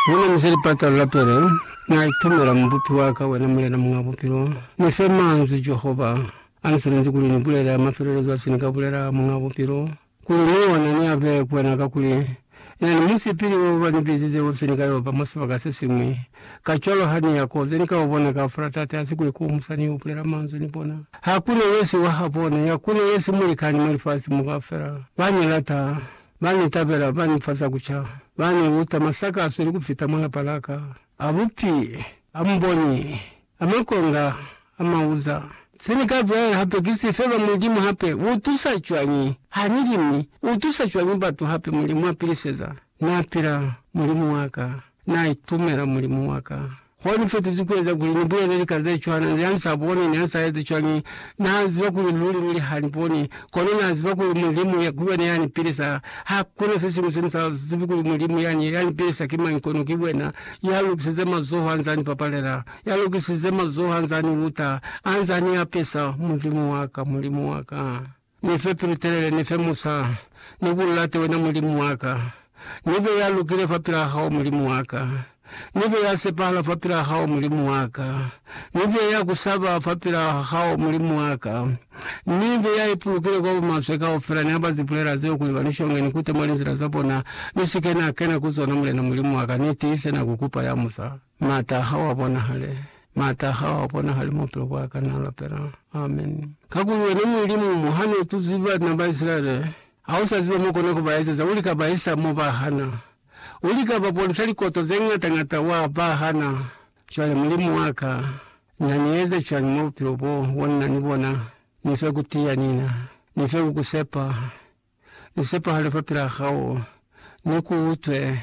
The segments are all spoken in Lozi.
Wena Muse Lipatalo la Pele, Na itumela Mubupi wa ka, Wena Mulena Muñ'a Bupilo. Ni fe manzwi, Jehova, a Ni silinzi kuli Ni bulele a mafelelezo a se Ni ka bulela, Muñ'a Bupilo, kuli ni ona ni a bee ku Wena, kakuli Na ni musipili wo ba ni bizize wo se ni ka yo ba mwa sibaka se siñwi. Kacwalo ha ni ya ko ze ni ka u bona kaufela, Tate, hasi kuli ku umusa ni yo bulela manzwi ni bona. Hakuna yesi wa habona, yakuna yesi mulikani mwa lifasi mo kaufela. Ba ni lata. Ba ni tabela, ba ni fa za ku ca, ba ni luta masakazo ni ku fita mwa palaka a bupi, a muboni, a makonga, a mauza. Se ni ka bulela hape ki si, Feba Mulimu hape u tusa cwañi ha ni li, mi u tusa cwañi batu hape? Mulimu a piliseza. Na pila Mulimu wa ka, na itumela Mulimu wa ka, Mwa ni fetezi ku eza kuli ni bulele lika ze cwana, ni ha ni sa boni, ni ha ni sa ezi cwañi, Na ziba kuli luli, luli ha ni boni. Kono Na ziba kuli Mulimu ki wena ya ni pilisa. Ha kuna se siñwi se ni sa zibi kuli Mulimu yani ya ni pilisa ki mañi kono ki wena. Ya lokisize mazoho ha nza ni papalela. Ya lokisize mazoho ha nza ni uta, ha nza ni apesa. Mulimu wa ka, Mulimu wa ka! Ni fe pilu telele, ni fe musa, ni ku late wena Mulimu wa ka. Ni be ya lukile fapil'a hao, Mulimu wa ka. Ni be ya sepahala fapil'a hao, Mulimu wa ka. Ni be ya ku saba fapil'a hao, Mulimu wa ka. Ni be ya ipulukile kwa bumaswe kaufela. Ni hamba zipulela zeo kuli ba ni shonge, ni kute mwa linzila za bona, ni si ke na kena ku zona, Mulena Mulimu wa ka. Ni tiise na ku kupa ya musa. Maata ha wa bonahale, maata ha wa bonahale mu bupilo bwa ka, na lapela. Amen. Kakuli wena Mulimu, mo ha no tuzi bana ba Isilaele, ha u sa ziba mo kona ku ba ezeza, u lika ba isa mo ba hana. U lika ba bonisa likoto ze ngata-ngata, wa ba hana. Cwale, Mulimu wa ka, na ni eze cwañi mwa bupilo bo, bo ni na ni bona? Ni fe ku tiya, Nina. Ni fe ku ku sepa. Ni sepahale fapilaa hao, ni ku utwe,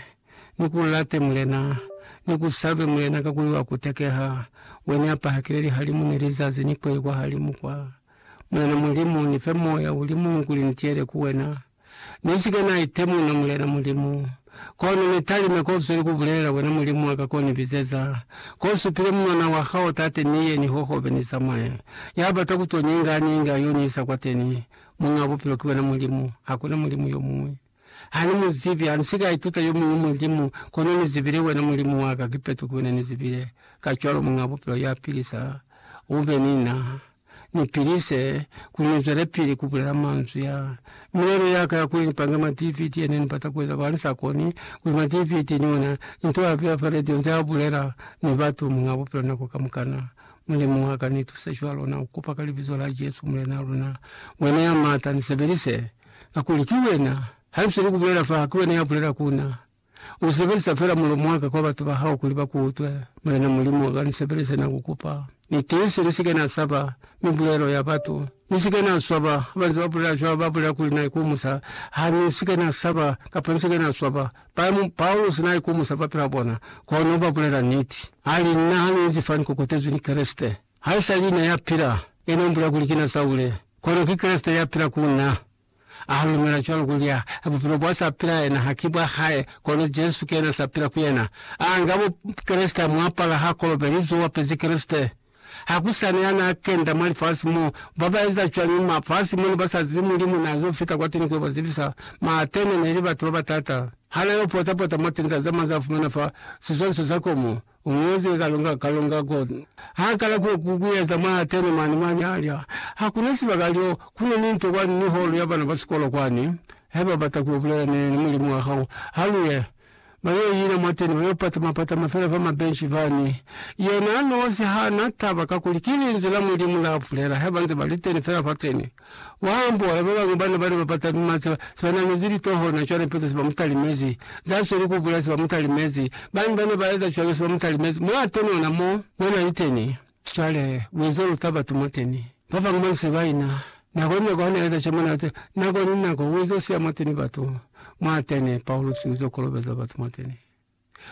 ni ku late Mulena, ni ku sabe Mulena, kakuli wa ku tekeha, wene a pahakile lihalimu ni lizazi ni kweli kwahalimu kwa. Mulena Mulimu, ni fe moya uli muñwi kuli ni tiyele ku wena. Ni si ke na itemuna, Mulena Mulimu. Kono ni talime ko zweli ku bulelela wena, Mulimu wa ka, ko ni bizeza, ko supile munwana wa hao, Tate, ni ye, ni hohobe, ni zamaye. Ya bata ku to nyinga, a nyinge, a yo ni isa kwateni. Muñ'a bupilo ki wena Mulimu, hakuna mulimu yo muñwi. Ha ni mu zibi, ha ni si ka ituta yo muñwi mulimu, kono ni zibile wena Mulimu wa ka, kipeto ki wena ni zibile. Kacwalo Muñ'a Bupilo ya pilisa, u be ni na, ni pilise, kuli ni zwelepili ku bulela manzwi a. Milelo ya ka ya kuli ni pange ma DVD ye ne ni bata ku eza, kono ha ni sa koni, kuli ma DVD ni ona nto ya beya fa radio nze a bulela ni batu, Muñ'a Bupilo nako kamukana, Mulimu wa ka, ni tuse cwalo na ku kopa ka Libizo la Jesu, Mulena luna. Wena ya Mata, ni sebelise, kakuli ki Wena, ha nsi ni ku bulela fa, ki Wena ya bulela ku na. U sebelisa fela mulomo wa ka kwa batu ba Hao kuli ba ku utwe. Mulena Mulimu wa ka, ni sebelise, na ku kopa. Ni tiise, ni si ke na saba mibulelo ya batu. Ni si ke na swaba. Ba nze ba bulela cwalo, ba bulela kuli, Na ikomusa. Ha ni si ke na saba, kapa ni si ke na swaba. Pa, Paulusi na ikomusa fa pela bona, kono ba bulela niti. A li, Nna ha ni inzi fa ni kokotezwi ni Kreste. Haisali na ya pila, yena u mbulela kuli, Ki na Saule, kono ki Kreste ya pila ku nna. A lumela cwalo kuli ha bupilo bwa sa pila yena ha ki bwa hae, kono Jesu ki yena sa pila ku yena. A nga Bukreste, a mu apala, ha kolobelizwe, u apezi Kreste. Ha ku sa na ya n'a kenda mwa lifasi mo. Ba ba eza cwañi mafasi mo ne ba sa zibi Mulimu n'a z'o fita kwateni ku yo ba zibisa? Ma Atene ne li batu ba ba taata. Ha n'a yo pota-pota mwa tinza ze mañi za fumana fa sizwaliso za komo, Umuuze kalonga kalonga ko ha kala ku ku kueza mwa tene mane mwa mialya ha kuna sibaka lyo kuna ni nto kwani ni holo ya bana ba sikolo kwani he ba bata ku bulela ne ni mulimu wa hao ha luye ba yo ina mwa tene ba yo patama patama fela fa mabenshi fani yena nosi ha na taba kakuli ki linzwi la mulimu la bulela he banze ba liteni fela fa tene Mwa ambola, ba bañwi bana bane ba pata pima se ba namezi litoho na cwale mpeto se ba mu talimezi, za sweli ku bula se ba mu talimezi. Bañwi bane ba eza cwalo se ba mu talimezi, mwa atonona mo mwa na li teni. Cwale, u ezo luta batu mo teni. Ba bañwi ba nse ba ina. Nako ni nako ha na eza cwalo mo na li teni, nako ni nako u ezo siya mo teni batu, mwa teni, Paulusi, u zo kolobeza batu mo teni.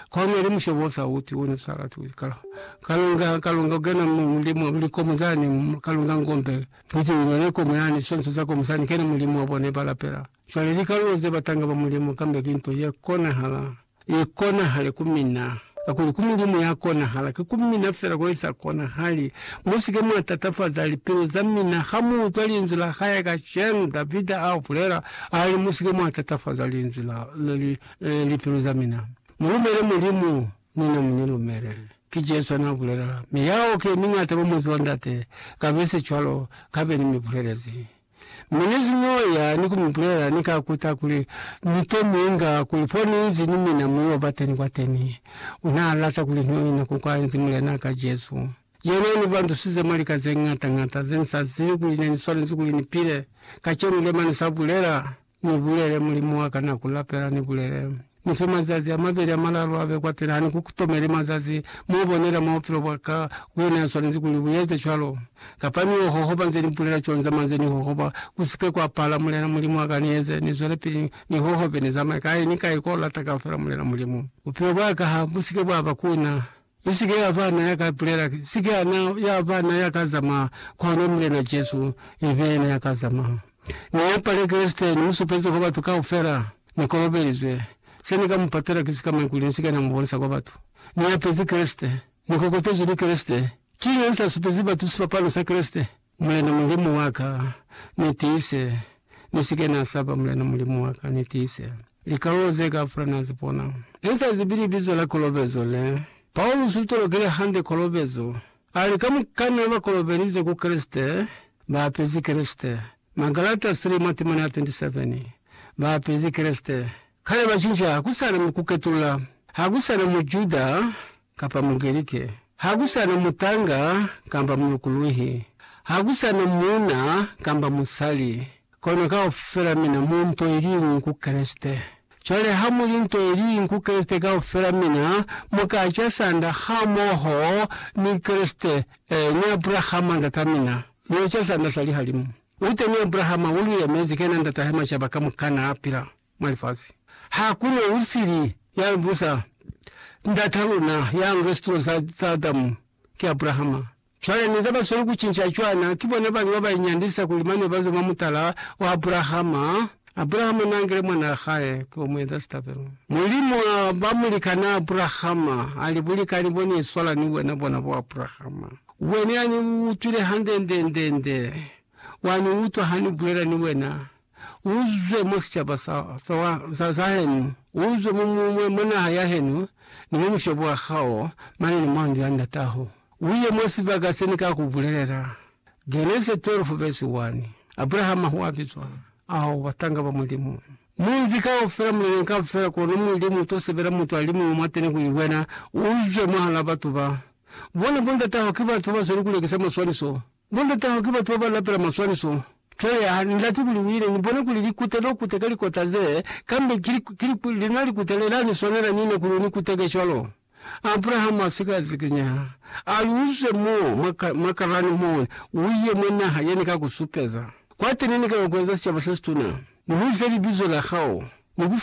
Kaona li mushobo sa uti una sa lati uti ka kalunga kalunga ugena mulimo likomo zane kalunga ngombe kuti unone komo yane sonso za komo sani kena mulimo bone ba lapela shwale li kaluo ze batanga ba mulimo kambe ki nto ye konahala ye konahale ku mina kakuli ku mulimo ya konahala ki ku mina fela ko isa konahali. Musike mwa tatafaza lipilu za mina ha mu utwa linzwi la hae kashenu Davida a bulela ali musike mwa tatafaza linzwi la li Ee, lipilu za mina. Mulumele Mulimu, ni na munilumele. Ki Jesu ana bulela. Mi yao ki yemiñata kwa Muzi wa Ndate, kabe se cwalo, kabe ni mi bulelezi. Mi ni si n'o ya ni ku mi bulela, ni ka kuta kuli ni to minga, kuli fo ni inzi ni mina mu yo ba teni kwateni. Una lata kuli ni yo ina ku kwa inzi Mulenaa ka Jesu. Yena uni bandusize mwa lika ze ñata-ñata, ze ni sa zibi kuli ne ni swanezi kuli ni pile. Kacenu, lemani sa bulela. Ni bulele, Mulimu wa ka, na ku lapela, ni bulele, Ni fe mazazi a mabeli a malalu a be kwa pila, ha ni ku tomeli mazazi mo u bonela mwa bupilo bwa ka, ku yona ya swanezi kuli u eze cwalo. Kapa ni yo hohoba nze ni bulela cwalo nzama nze ni hohoba, ku si ke kwa pala, Mulena Mulimu wa ka, ni eze, ni zwelepili ni hohobe, ni zamaye kai ni kai ko lata kaufela, Mulena Mulimu. Bupilo bwa ka ha bu si ke bwa ba ku na. Mi sike yaba na ya ka bulela, sike yana yaba na ya ka zamaya, kono Mulena Jesu ibe yena ya ka zamaya. Ni yapale Kreste, ni mu supeze kwa batu kaufela, Ni kolobelizwe. Se ni ka mu patela ki sika maikuli ni sike na mu bonisa kwa batu. Ni yapezi Kreste. Ni kokotezwi ni Kreste. Kiña ni sa supezi batu sipapalo sa Kreste? Mulena Mulimu wa ka, ni tiise, ni si ke na saba, Mulena Mulimu wa ka, ni tiise. Likalolo ze kaufela na zi bona. Ni sa zibi libizo la kolobezo le. Paulusi u tolokile hande kolobezo. A li, Kamukana ba kolobelize ku Kreste, ba apezi Kreste. Magalata 3 mwa temana ya 27. Ba apezi Kreste. Kale ba cinca, ha ku sa na kuketulula. Ha ku sa na Mujuda, kapa Mugerike, ha ku sa na mutanga kamba mulukuluhi, ha ku sa na muuna kamba musali, kono kaufela mina mu nto i li ñwi ku Kreste. Cwale ha mu li nto i li ñwi ku Kreste, kaufela mina mu ka ca sanda hamoho ni Kreste, ee, ni Abrahama ndata mina, mu eca sanda sa lihalimu. U teni Abrahama u lu yemezi, kena ndata he macaba kamukana a pila. mwa lifasi. Hakuna usili ya busa Ndata luna ya nga situlo za, za Adamu, ki Abrahama. Cwale neza ba sweli ku cinca cwana, ki bona bañwi ba ba inyandisa kuli mane baze mwa mutala wa Abrahama. Abrahama na ngile mwana wa hae ki wo mu eza sitabelo. Mulimu a ba mulikana Abrahama, a li, Bulikani bo ni iswala ni wena bona bo Abrahama. Wena ya ni utwile hande nde, nde, nde, wa ni utwa ha ni bulela ni wena. uzwe mwa sicaba sa, sa, wa, sa, sa henu, uzwe mu, mu, mwa, mwa naha ya henu, ni mwa mushobo wa hao, mane ni mwa ndu ya ndataho, uye mwa sibaka se Ni ka ku bulelela. Genese 12 vesi 1. Abrahama hua bizwa, ao batanga ba Mulimu. Munzi kaufela, muleneñi kaufela, kono Mulimu uto sebela mutu alimuñwi mwateni kuli wena uzwe mwahal'a batu ba. Bona, bo ndataho ki batu bazweli kulekisa maswaniso, Ni lutaho ki batu baba lapela maswaniso. Cwale ha ni lati kuli uile ni bone kuli likute lo kute ka likota ze, kambe ki, ki, ki lina likute le la ni swanela nina kuli u ni kuteke cwalo. Abrahama a sika zikinyeha. A li, Uze mo, mwa, mwa Karani mo, uye mwa naha ye Ni ka ku supeza. Kwateni Ni ka yo ku eza sicaba se situna, ni hulise libizo la Hao, ni ku